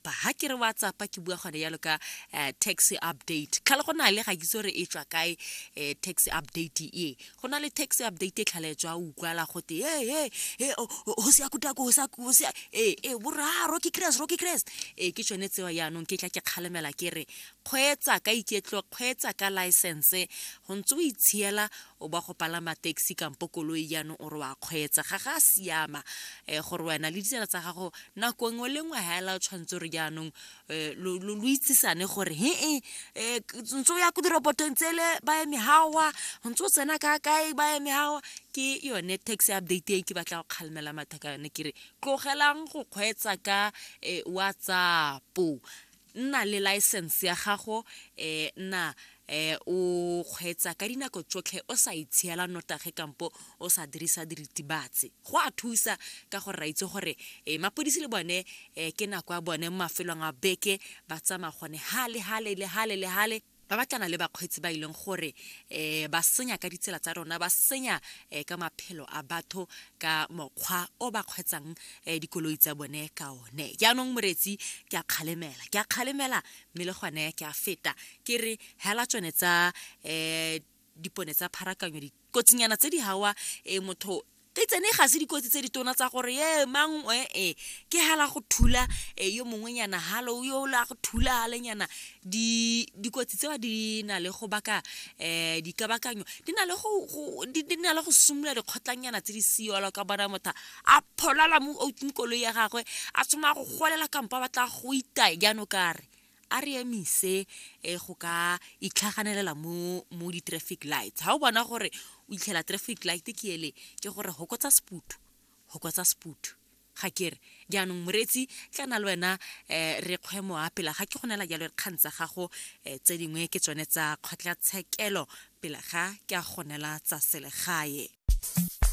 tsapa ha ke re wa tsapa ke bua gone yalo ka eh, tax update tlhale go na le ga kitse gore e tswa kae eh, tax update e go na le tax update e tlhale tswa o utlwala go te e e go se ya kutako go sa go se e e borra rocky crest rocky crest e ke tsone tsewa yaanong ke tla ke kgalemela ke re kgweetsa ka iketlo kgweetsa ka license go ntse o itshiela o ba go palama taxi kampo koloi jaanong o re wa kgweetsa ga ga siama um gore wena le ditsela tsa gago nako nngwe le nngwe ga ela tshwanetse gore jaanong um lo itsisane gore he e um ntse o ya ko dirobotong tsele ba eme gawa ntse o tsena ka kae ba eme gawa ke yone tax update e ke batla go kgalemela mathaka yone ke re tlogelang go kgweetsa ka um whatsapp nna le license ya gago um nna um o kgweetsa ka dinako tsotlhe o sa itshiela notage kampo o sa dirisa diritibatsi go a thusa ka gore ra itse gore um mapodisi le bone um ke nako ya bone mo mafelong a beke ba tsamaya gone hale hale le hale le hale ba batlana le bakgweetsi ba e leng gore um ba senya ka ditsela tsa rona ba senya um ka maphelo a batho ka mokgwa o ba kgweetsang um dikoloi tsa bone ka one jaanong moretsi ke a kgalemela ke a kgalemela mme le gone ke a feta ke re hela tsone tsa um dipone tsa pharakanyo dikotsinyana tse di hawa e motho te tsene ga se dikotsi tse di tona tsa gore e mang e e ke hala go thula e yo mongwe nyana halo yo la go thula hale nyana di dikotsi tsewa di na le go baka um dikabakanyo di na le go di na le go simolola dikgotlanyana tse di siolo ka bona motho a pholala mo outseng koloi ya gagwe a tshwanela go golela kampo a batla go itaya jaanong kare a re emise um go ka itlhaganelela mo mo di-traffic lights ga o bona gore o itlhela traffic light ke ele ke gore hokotsa seputhu hokotsa seputhu ga kere jaanong moreetsi tla na le wena um re kgwe mowa pela ga ke go nela jalo dikgang tsa gago um tse dingwe ke tsone tsa kgotlatshekelo pele ga ke a go nela tsa selegae